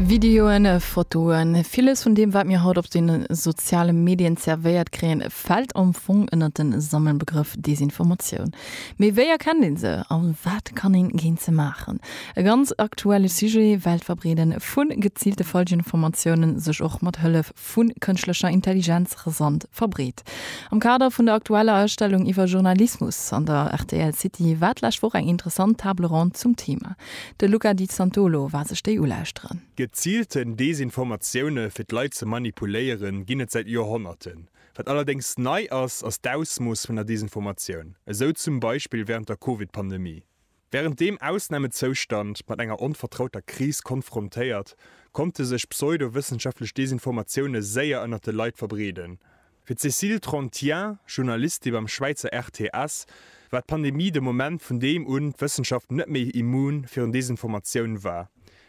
Videoen, Fotoen, villes vun deem wat mir haut op de soziale Medien zervéiert kréien, fält am Fong ënnert de Sammelbegrëff Desinformatioun. Mee wéi erkennt een se a wat kann een géint se maachen? E ganz aktuelle Sujet, well d'Verbreeden vun geziilte Falschinformatiounen sech och mat Hëllef vu kënschtlecher Intelligenz rasant verbreet. Am Kader vun der aktueller Ausstellung iwwer Journalismus an der rtl City war d'lescht Woch eng interessant Table ronde zum Thema. De Luca Di Santolo war sech déi ulauschteren. Geziilten Desinformatioune fir d'Leit ze manipuléieren, ginn et säit Joerhonnerten. Wat allerdéngs nei ass, ass d'Ausmooss vun der Desinformatioun, esou zum Beispill wärend der Covid-Pandemie. Wärend deem Ausnamezoustand mat enger onvertrauter Kris konfrontéiert, konnte sech pseudo-wëssenschaftlech Desinformatioune séier ënnert de Leit verbreeden. Fir d'Cécile Trantien, Journalistin beim Schwäizer RTS, war d'Pandemie de Moment, vun deem un d'Wëssenschaft net méi immun virun Desinformatioun war,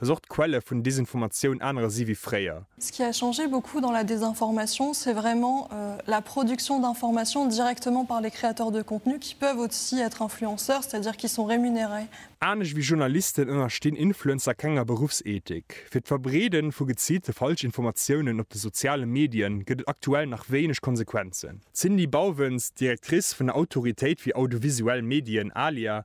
dass och d'Quelle vun Desinformatioun anere si wéi fréier. Ce qui a changé beaucoup dans la désinformation, c'est vraiment la production d'informations directement par les créateurs de contenus qui peuvent aussi être influenceurs, c'est-à-dire qui sont rémunérés. Anescht wéi Journalisten ënnerstinn Influencer kenger Beruffsethik. Fir d'Verbreede vu geziilte Falschinformatiounen op de soziale Medie gëtt et aktuell nach wéineg Konsequenzen. D'Cindy Bauwens, Directrice vun der Autoritéit fir audiovisuell Medien, ALIA,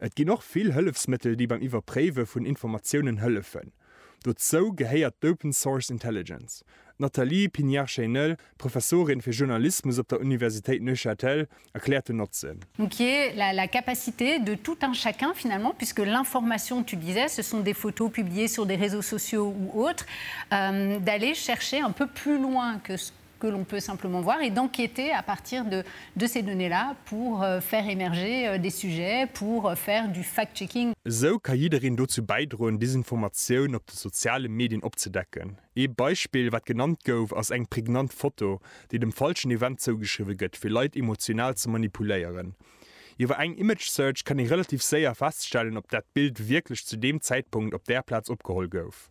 Et ginn och vill Hëllefsmëttel déi beim Iwwerpréiwe vun Informatiounen hëllefen. Dozou gehéiert d'Open Source Intelligence. D'Nathalie Pignard-Cheynel, Professorin fir Journalismus op der Universitéit Neuchâtel, erkläert den Notzen. Donc qui est la la capacité de tout un chacun finalement puisque l'information, tu disais, ce sont des photos publiées sur des réseaux sociaux ou autres, d'aller chercher un peu plus loin que ce que l'on peut simplement voir et d'enquêter à partir de de ces données-là pour faire émerger des sujets, pour faire du fact-checking. Esou ka jiddereen dozou bäidroen, Desinformatioun op de soziale Medien opzedecken. Ee Beispill, wat genannt gouf, ass eng prägnant Foto, déi dem falschen Event zougeschriwwe gëtt, fir Leit emotional ze manipuléieren. Iwwer eng Image Search kann ee relativ séier feststellen, ob dat Bild wierklech zu deem Zäitpunkt op där Plaz opgeholl gouf.